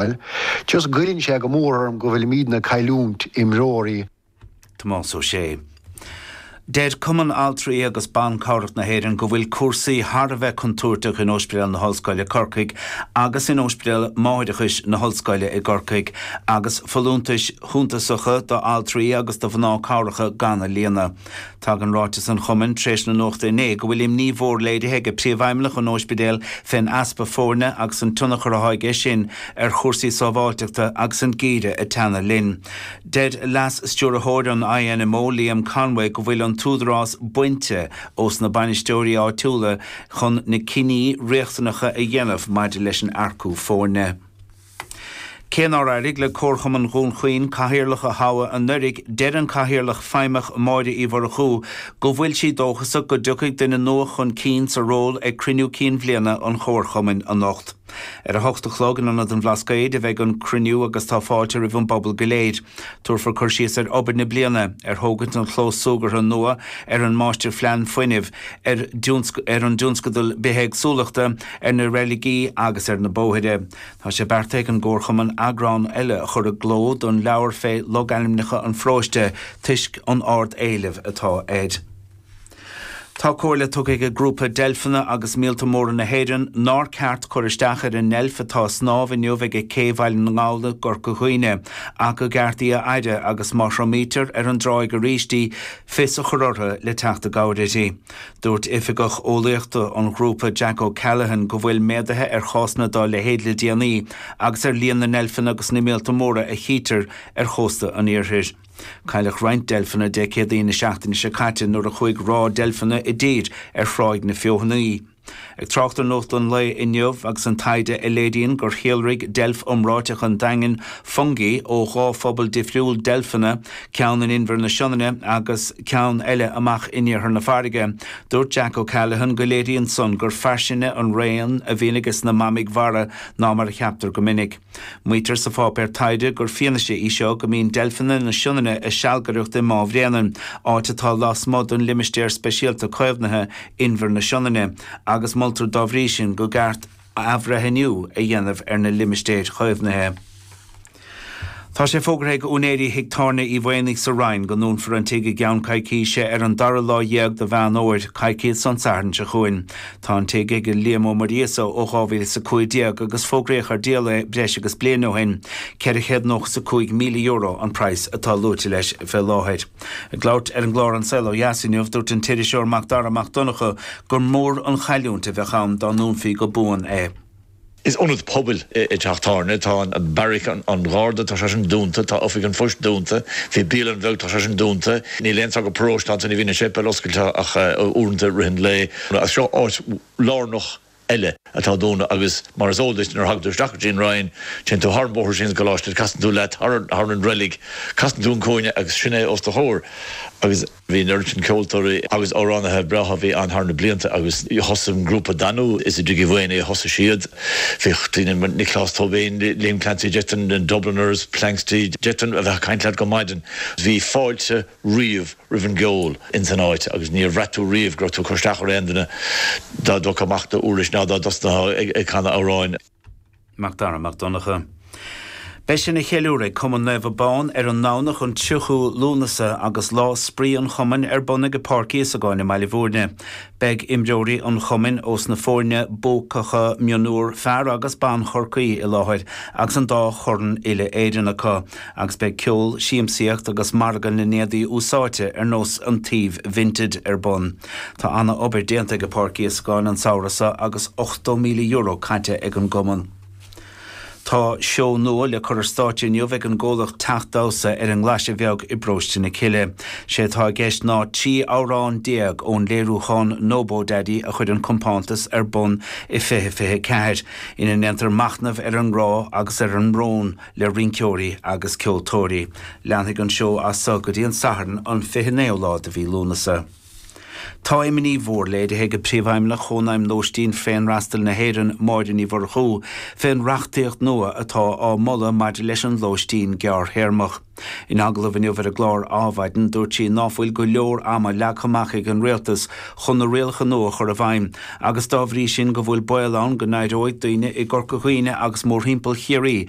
Bhuel, just goilleann sé go mór orm go bhfuilimídne ag cailliúint imreoirí. Tomás Ó Sé. Deir Cumann Altraí agus Ban Cabhrach na hÉireann go bhfuil cúrsaí thar a bheith contúirteach in Ospidéal na hOllscoile i gCorcaigh agus in Ospidéal Máithreachais na hOllscoile i gCorcaigh agus folúntais shuntasacha d'altraí agus do mhná cabhracha gan a líonadh. Tagann ráiteas an Chumainn tar éis na nuachta inné go bhfuil imní mhór léirithe ag Príomhfheidhmeannach an ospidéil fén easpa foirne agus an tionchar atá aige sin ar chúrsaí sábháilteachta agus an geimhreadh ag teannadh linn. Deir Leas Stiúrthóir an INMO Liam Conway go bhfuil an t-údarás bainte ós na bainisteoirí áitiúla chun na cinní riachtanacha a dhéanamh maidir le hearcú foirne. Cé nár éirigh le Comharchumann Dhún Chaoin cathaoirleach a thoghadh anuraidh, deir an cathaoirleach feidhmeach Máire Uí Mhurchú go bhfuil sí dóchasach go dtiocfaidh duine nua chun cinn sa ról ag cruinniú cinn bhliana an Chomharchumainn anocht. Ar a hocht a chlog in Ionad an Bhlascaoid a bheidh an cruinniú agus tá fáilte roimh an bpobal go léir. Tabharfar cur síos ar obair na bliana, ar thógaint an chlós súgartha nua, ar an máistir phlean fuinnimh, ar an dtionscadal bithéagsúlachta, ar na reiligí agus ar na bóithre. Tá sé beartaithe ag an gComharchumann eagrán eile a chur i gcló don leabhar fé logainmneacha an pharóiste toisc an ard éilimh atá air. Tá comhairle tugtha ag an grúpa Deilfeanna is Míolta Móra na hÉireann nár ceart cur isteach ar an ndeilf atá ag snámh inniu ag Cé Bhaile na nGall i gCorca Dhuibhne ach gur ceart í a fhaire agus má thriomaítear ar an dtráigh arís í fios a chur orthu le teacht i gcabhair uirthi. Dúirt Oifigeach Eolaíochta an ghrúpa Jack O'Callaghan go bhfuil méadaithe ar chásanna dá leithéid le déanaí agus ar líon na ndeilfeanna agus na míolta móra a chítear ar chósta an iarthair. Cailleadh roinnt deilfeanna Dé Céadaoin na seachtaine seo caite nuair a chuaigh ráth deilfeanna i dtír ar Thráigh na Feothanaí. Ag trácht ar nuacht an lae inniu agus an taighde a léiríonn gur shíolraigh deilf iomráiteach an Daingin, Fungi, ó dhá phobal difriúil deilfeanna, ceann in inbhear na Sionainne agus ceann eile amach in iarthar na farraige, dúirt Jack O'Callaghan go léiríonn san gur fairsinge an raon a bhíonn aige sna mamaigh mhara ná mar a cheaptar go minic. Maítear sa pháipéar taighde gur fianaise í seo go mbíonn deilfeanna na Sionainne ag sealgaireacht i mBá Bhréanainn, áit atá lasmuigh den Limistéar Speisialta Caomhnaithe, Inbhir na Sionainne, agus moltar dá bhrí sin gur ceart athbhreithniú a dhéanamh ar na limistéir chaomhnaithe. Tá sé fógartha ag úinéirí Thigh Tábhairne Uí Mhaonaigh sa Rinn go ndúnfar an tigh i gceann coicíse ar an dara lá dhéag de Mheán Fhomhair, coicíos ón Satharn seo chugainn. Tá an tigh ag Liam Ó Muiríosa ó 2015 agus fógraíodh ar díol é breis agus bliain ó shin. €495,000 an praghas atá luaite leis fé láthair. Ag labhairt ar an gclár An Saol Ó Dheas inniu, dúirt an t-iriseoir Mac Dara Mac Donncha gur mór an chailliúint a bheadh ann dá ndúnfaí go buan é. Is ionad pobail é teach tábhairne. Tá beairic an Gharda, tá sé sin dúnta. Tá Oifig an Phoist dúnta. Bhí bialann bheag ann, tá sé sin dúnta. Níl aon teach paróiste ann, ní bhíonn an séipéal oscailte ach uaireanta i rith an lae. Ach seo áit lárnach eile atá dúnta agus mar is eol duit, nuair a thagann tú isteach go dtí an Roinn, téann tú thar an bóthar síos don gcoláiste, casann tú leat thar an reilig, casann tú an cúinne agus sin é os do chomhair. Agus. Bhí an oiread sin ceoltóirí agus amhránaithe breátha bhí ann thar na blianta agus thosaigh an grúpa Danú, is i dTigh Uí Mhuirithe a thosaigh siad. Bhíodh daoine mar Nioclás Tóibín, Liam Clancy, De Dannan, The Dubliners, Planxty, d'fhéadfainn a bheith ag caint leat go maidin. Bhí fáilte riamh roimh an gceol ins an áit agus níor bhraith tú riamh go raibh tú ag cur isteach ar aon duine dá dtógfá amach do úirlis ná dá dtosnófá ag canadh amhráin. Mac Dara Mac Donncha. Beidh sin á cheiliúradh ag Cumann Naomh Abán ar an nDomhnach an 30ú Lúnasa agus Lá Spraoi an Chumainn ar bun ag Páirc Íosagáin i mBaile Mhúirne. Beidh imreoirí an Chumainn ós na fóirne buacacha mionúr fear agus ban Chorcaí i láthair agus an dá chorn uile Éireann acu agus beidh ceol, siamsaíocht agus margadh na n-éadaí úsáidte ar nós an tsuímh Vinted ar bun. Tá ana obair déanta ag Páirc Íosagáin an Samhradh seo agus €80,000 caite ag an gCumann. Tá seó nua le cur ar stáitse inniu ag an gcomhlacht Teach Damhsa ar an nGlaise Bheag i bParóiste na Cille. Sé atá i gceist ná 13 amhrán ón léiriúchán Nobodaddy a chuir an compántas ar bun i 2024, ina ndéantar machnamh ar an ngrá agus ar an mbrón, le rinceoirí agus ceoltóirí. Leanfaidh an seó as so go dtí an Satharn an 29ú lá de mhí Lúnasa. Tá imní mhór léirithe ag Príomhfheidhmeannach Chónaidhm Lóistín Féinfhreastail na hÉireann, Máire Ní Mhurchú, fén reachtaíocht nua atá á moladh maidir leis an lóistín gearrthéarmach. In agallamh inniu ar an gclár Adhmhaidin, dúirt sí ná fuil go leor ama leagtha amach ag an Rialtas chun na rialacha nua a chur i bhfeidhm agus dá bhrí sin go bhfuil baol ann go n-éireoidh daoine i gCorca Dhuibhne agus mórthimpeall Chiarraí